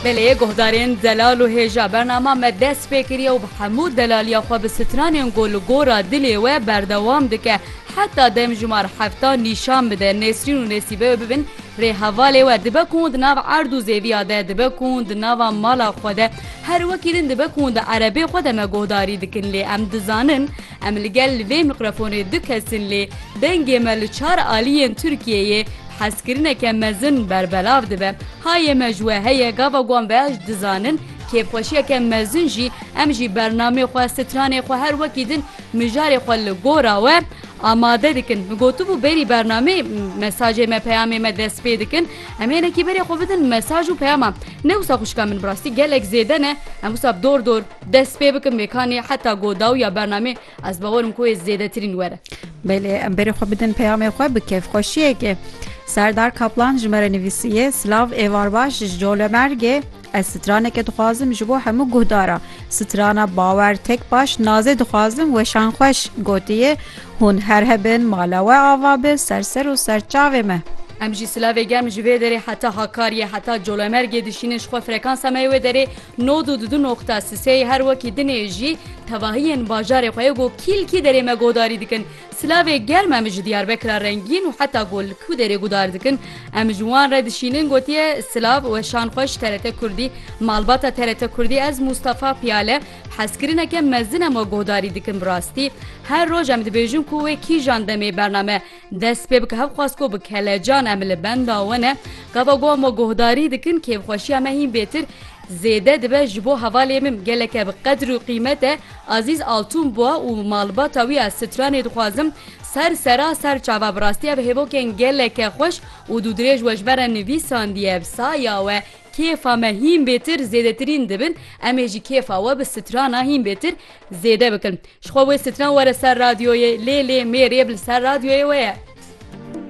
Belê guhdarên zelal û hêja bernama me dest pê kiriye û bi hemû delaliya xwe bi stranên ku li gora dilê we berdewam dike heta demjimar hefta nîşan bide Nesrîn û Nesîbe wê bibin rê hevalê we dibe ku hûn di nav erd û zêviya de dibe ku hûn di nava mala xwe de her wekî din dibe ku hûn di erebê xwe de me guhdarî dikin lê em dizanin Em li gel li vê mîkrofonê du kes in lê dengê me li çar aliyên Tirkiyeyê bi hezkirineke mezin berbelav dibe. Hayê me ji we heye gava wan beş dizanin, kêfxweşiyeke mezin jî em jî bernameyê xwe, stranê xwe her wekî din mijarê xwe li gora we amade dikin. Min gotibû berî bernameyê mesajê me, peyamê me dest pê dikin. Em hênekî berê xwe bidin mesaj û peyama. Ne wisa xwişka min bi rastî gelek zêde ne, em wisa bi dor dor, Dest pê bikim vê kanê heta go daw ya bernamê ez bawer im ku wê zêdetirîn were. Belê em berê xwe bidin peyamê xwe bi kêfxweşiyekê. Serdar Kaplan ji me re nivîsiye, Silav êvar baş ji Colemêrgê Ez straneke dixwazim ji bo hemû guhdara strana bawer tek baş nazê dixwazim weşan xweş gotiye hûn her hebin mala we ava bi ser ser û ser çavê me. Em jî silavê germ ji vê derê heta Hakariyê heta Colemêrgê dişînin ji xwe frekansa me yê wê derê Nod û di du noqta Siseyê her wekî dinê jî tevahiyên bajarê xwe go kîlkî derê me godarî dikin. Silavê germ em ji Diyarbekira rengîn û heta go li ku derê gudar dikin em ji wan re dişînin gotiye Silav weşan xweş TRT Kurdî Malbata TRT Kurdî ez Mûstafa Piyale hezkirineke mezin em we godarî dikin bi rastî her roj em dibêjin ku wê kîjan demê bername Dest pê bike hev xwest ku bi kelecan em li benda we ne, gava got me guhdarî dikin kêfxweşiya me hîn bêtir zêde dibe ji bo hevalê min geleke bi qedr û qîmet e Azîz Altun bûa û malbata wî ez stranê dixwazim ser sera ser çava bi rastî ev hêvokên geleke xweş û dûdirêj we ji me re nivîsandiye bi saya we kêfa me hîn bêtir zêdetirîn dibin em ê ji kêfa we bi strana hîn bêtir Zêde bikin. Ji xwe wê stran were ser radyoyê. Lê lê mêrê bi li ser radyoyê we ye.